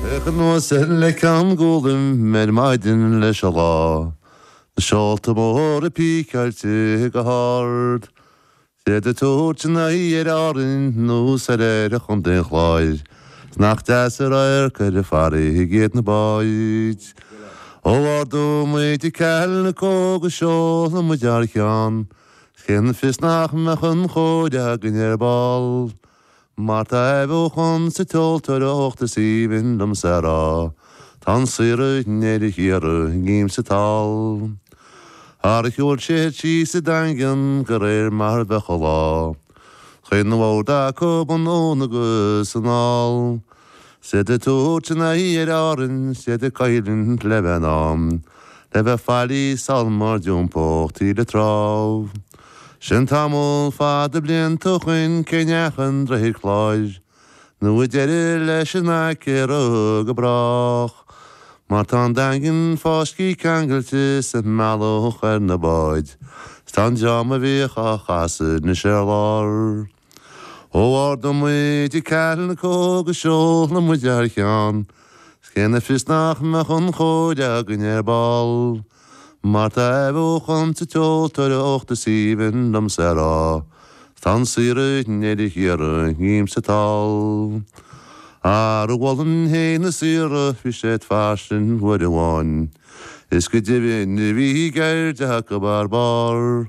Bheadh anuas air le Ceann Gólaim ar maidin leis an lá, na seolta móra píceáilte go hard, 's iad ag tabhairt a n-aghaidh ar Árainn nó soir ar Chontae an Chláir, 's nach deas an radharc ar an bhfarraige iad na báid. Ó ardóidh muid an calico go seolfaidh muid thar cheann, 's cén fios nach mbeadh an chóir againn ar ball. Mar tá athbheochan sa tseoltóireacht is aoibhinn liomsa a rá, tá an saoire inné le hiarraidh i gcéim sa tsáil. Thar a sheol siad síos sa Daingean go réir mar a bheadh an lá. Chaoin na bhfód acu anonn agus anall. 'S iad ag tabhairt a n-aghaidh ar Árainn, 's iad ag cailliúint le bheith ann, le bheith fáilí sol má d'iompódh taoille trá. Sin tamall fada blianta ó shoin cé neach an droichead cláir, nó tá deireadh leis in aice a rotha go brách, mar tá an daingean fáiscthe ceangailte sa mbealach ar na báid, 's tá an dream a bhíodh á chasadh anois ar lár. Ó ardóidh muid an calico go seolfaidh muid thar cheann 's cén fios nach mbeadh an chóir againn ar ball. Mar tá athbheochan sa tseoltóireacht is aoibhinn liomsa a rá 's tá an saoire nil a hiarraidh dhíom sa tsáil. Ar mhullin féin na saortha bhí siad fairsing uair amháin is go deimhin bhíodh an cheird acu thar barr.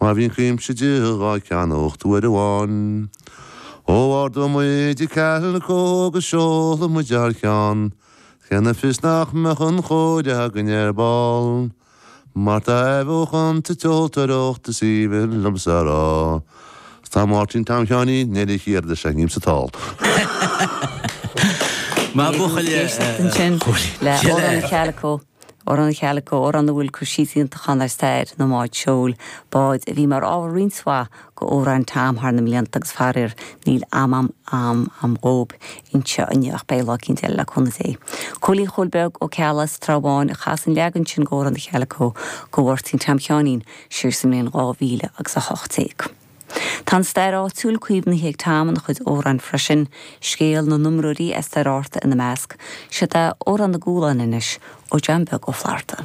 Mar bhíodh cuimse dhíobh dhá gceannacht uair amháin, ó ardóidh muid an calico go seolfaidh muid thar cheann, cén fios nach mbeadh an chóir againn ar ball, mar tá athbheochan sa tseoltóireacht, is aoibhinn liomsa a rá. Tá Máirtín Tom Sheáinín Neilí Uí Chiardha ag seinm sa tsáil. Mar buachaille, chuaigh. Amhrán an Chalico, amhrán a bhfuil cur síos iontach ann ar stair na mbád seoil, báid a bhí mar ábhar roinnt mhaith go amhráin Tom thar na mblianta agus faraor níl am am am am dhóib anseo inniu ach beidh lá eicínt eile le cúnamh Dé. Cóilín Chóil Beag Ó Ceallaigh as Trá Bháin a chas an leagan sin go Amhrán an Chalico go Mháirtín Tom Sheáinín siar sa mbliain 2018. Tá an stair áitiúil caomhnaithe ag Tom ina chuid amhrán freisin, scéal na n-iomróirí as Doire Fhearta ina measc. Seo é Amhrán na Gualann anois, ó John Beag Ó Flatharta.